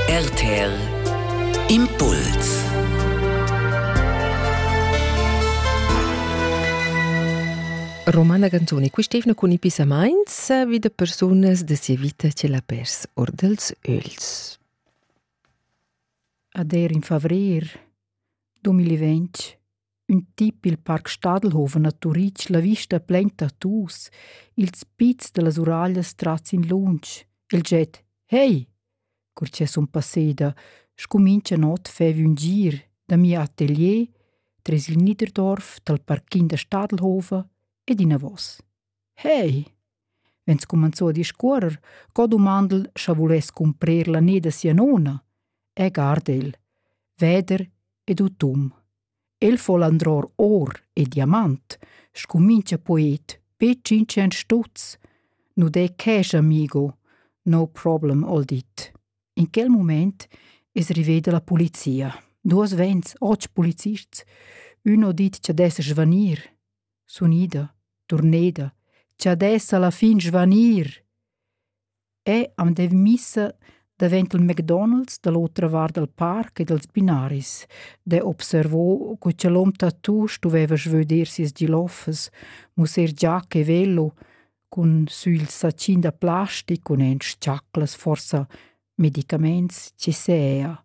RTL Impuls Romana Ganzoni, quist'evna cun i pissamaints vi da persunas da sia vita che l'ha pers or dels öls. Ad er in favrir 2020 Ün tip il Parc Stadelhofen a Turitg la vista plain tattoos, ils pizs da las uraglias trats in lunsch, il jet «Hey!» cur cha sun passeda, scumincha not faiv ün gir da mia atelier tres il Niederdorf dal parquin da Stadelhofen ed inavos. Hey! vegn scumanzù a discuorrer co dumandel scha vuless cumprer la ne da sia nona e guard el, veder ed utum. El fol andror or e diamant, scumincha poet be tschintschient stutz. Nu de cash, amigo, no problem, hol dit. In quel mument es riveda la polizia. Duos vents, otg polizists, ün ho dit cha dess svanir. sun ida, turneda, cha dessa la fin svanir. E am dev missa davent il McDonald's da l'otra vart dal parc e dals binaris, de observo co cha l'hom tattoo stuveva svöder sias giloffas, musser giacca e velo, cun sül sacin da plastic cun en s-chaclas forsa medicaments che sea.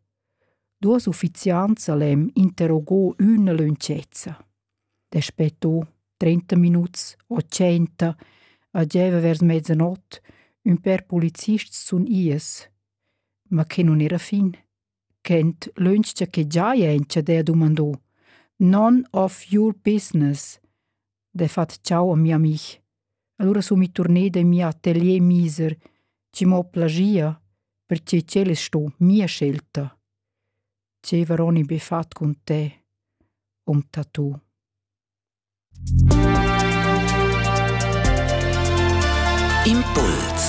Duas uffiziants al hem interrogò üna lönchezza. Daspetto trenta minuts o tschenta a gieva vers mezzanot ün pêr polizists sun ies, ma que nun era fin. Quent lönch cha que giaja in chadè dumandò: «None of your business!» Defat ciao a mia amih. Alura sun mi turneda in mia atelier miser, chi m'ho plagia, perche ch'el es sto mia scelta. Gieva Roni be fat cun te, um ta tu. Impuls